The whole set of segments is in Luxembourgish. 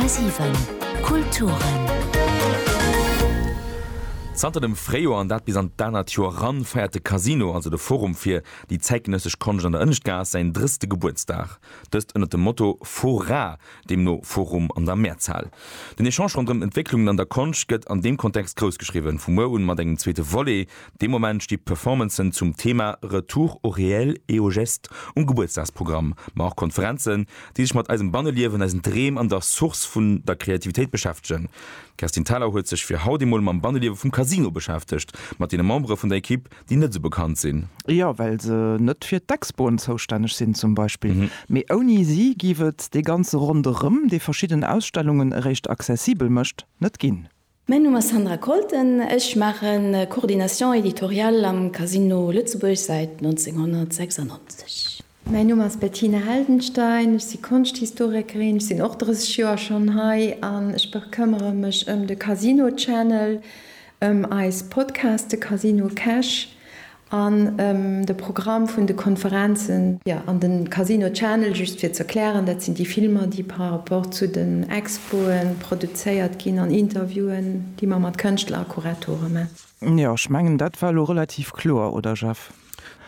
10,7 Kulturen. Zanter dem Fréijoer, an dat bis an d'anert Joer eran, feiert de Casino, also de Forum fir déi zäitgenëssesch Konscht an der Ënneschtgaass, säin drësste Gebuertsdag. Dëst ënnert dem Motto Fora, deemno Forum an der Mehrzahl. Den Echange ronderëm Entwécklungen an der Konscht gëtt an deem Kontext groussgeschriwwen. Vu muer un mat engem zweete Volet, Dee Moment sti Performancen zum Thema Retour au réel et aux gestes um Gebuertsdagsprogramm, ma och Konferenzen, déi sech mat eisem Banneliewen, eisen Dreem an der Source vun der Kreativitéit beschäftegen. D'Kerstin Thalau huet sech fir haut emol mam Banneliewe vum Casino beschäftegt, mat deene Membere vun der Equipe, déi net esou bekannt sinn. Jo, well se net fir d'Expoen zoustänneg sinn zum Beispill. Mee ouni si géif et dee ganze Ronderëm, dee verschidden Ausstellungen eréischt accessibel mécht, net ginn. Mäin Numm ass Sandra Kolten, ech maachen Coordination éditoriale am Casino Lëtzebuerg säit 1996. Mäin Numm ass Bettina Heldenstein, ech si Konschthistorikerin, ech sinn och 30 Joer schonn hei an ech bekëmmere mech ëm de Casino Channel, ëm eis Podcaste Casino Cash An de Programm vun de Konferenzen. Jo, an de Casino Channel, just fir ze erklären, dat sinn déi Filmer, déi par rapport zu den Expoe produzéiert ginn an Interviewen, déi mer mat Kënschtler a Kuratore man. Jo, ech mengen, dat war elo relativ kloer, oder Jeff?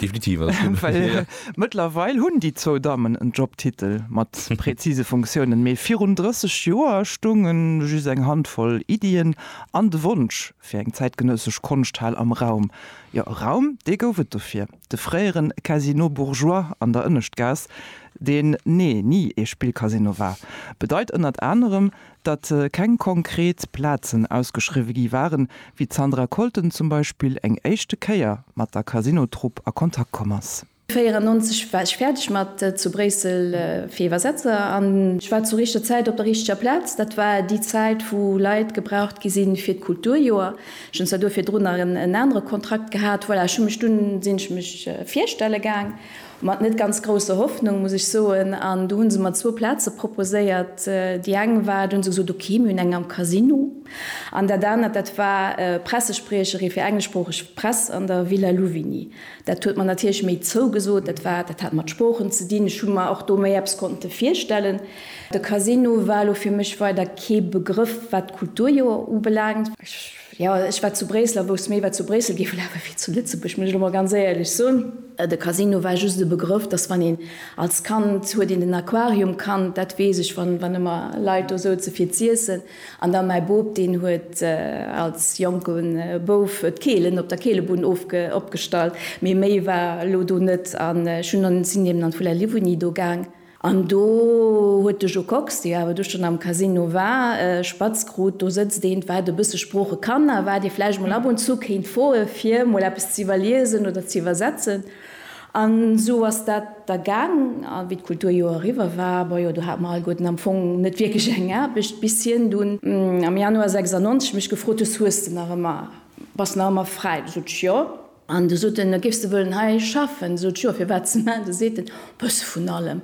Definitiv, alles gutt. Well mëttlerweil hunn déi zwou Dammen en Jobtitel mat präzise Funktiounen, mee virun 30 Joer stounge just eng Handvoll Iddien an de Wonsch, Fir eng zäitgenössesch Konschthal am Raum. Jo, e Raum, dee gouf et dofir, de fréieren Casino bourgeois an der Ënneschtgaass, deen, nee, ni ee Spillcasino war, bedeit ënnert anerem, datt keng konkret Plazen ausgeschriwwe gi waren, wéi d'Sandra Colton zum Beispill eng éischte Kéier mat der Casino-Trupp a Kontakt komm ass. 94 war ech fäerdeg mat zu Bréissel fir Iwwersetzer an ech war zur richter Zäit op der richteger Plaz. Dat war déi Zäit wou Leit gebraucht gi sinn fir d'Kulturjoer. Ech hunn zwar do virdrun nach en anere Kontrakt gehat. Voilà, ech hu mech dunn, sinn ech mech virstelle gaang, mat net ganz grousser Hoffnung muss ech soen, an du hunn se mer zwou Plaze proposéiert. Déi eng war, du hunn se gesot, ok, mir hunn eng am Casino an dat anert dat war Pressespriecherin fir engleschsproocheg Press an der Villa Louvigny. Dat huet mer natierlech méi zougesot. Dat war, dat hat mat Sproochen ze dinn. Ech hu mer och do méi eppes konnte virstellen. De Casino war elo fir mech weider kee Begrëff, wat d'Kulturjoer ubelaangt. Ech, jo, ech war zu Bréissel a wousst méi, wat zu Bréissel géif elafe wéi zu Lëtzebuerg, muss ech elo mol ganz éierlech soen. De Casino war just e Begrëff, dass, wann een als Kand, huet een den Aquarium kannt, dat weess ech, wann, wann ëmmer Leit do souze fir z'iessen, An da mäi Boob, deen huet als Jonke Bouf d'Keelen op der Keelebunn opgestallt. Mee méi war elo do net. An ech hunn dann, sinn eben an d'Villa Livoni do gaang. An do huet de Jo Kox, dee awer du schonn am Casino war, spatz krut, do sëtzt eent, wat e bësse Sprooche kann a wat ee vläicht mol ab und zu kéint froe fir mol eppes z'iwwerliesen oder z'iwwersetzen. An esou ass dat da gaang. A wéi d'Kulturjoer eriwwer war, bojo, do hate mer alleguerten am Fong net wierklech eng Aarbecht, bis hien dunn am Januar 96 mech gefrot huet, Hues de nach ëmmer, bass de nach ëmmer fräi? Sot ech, Jo. An du sot en, Géifs de wëllen hei schaffen? Sot ech, Jo. Firwat? Ze man? Du seet en, Bësse vun allem.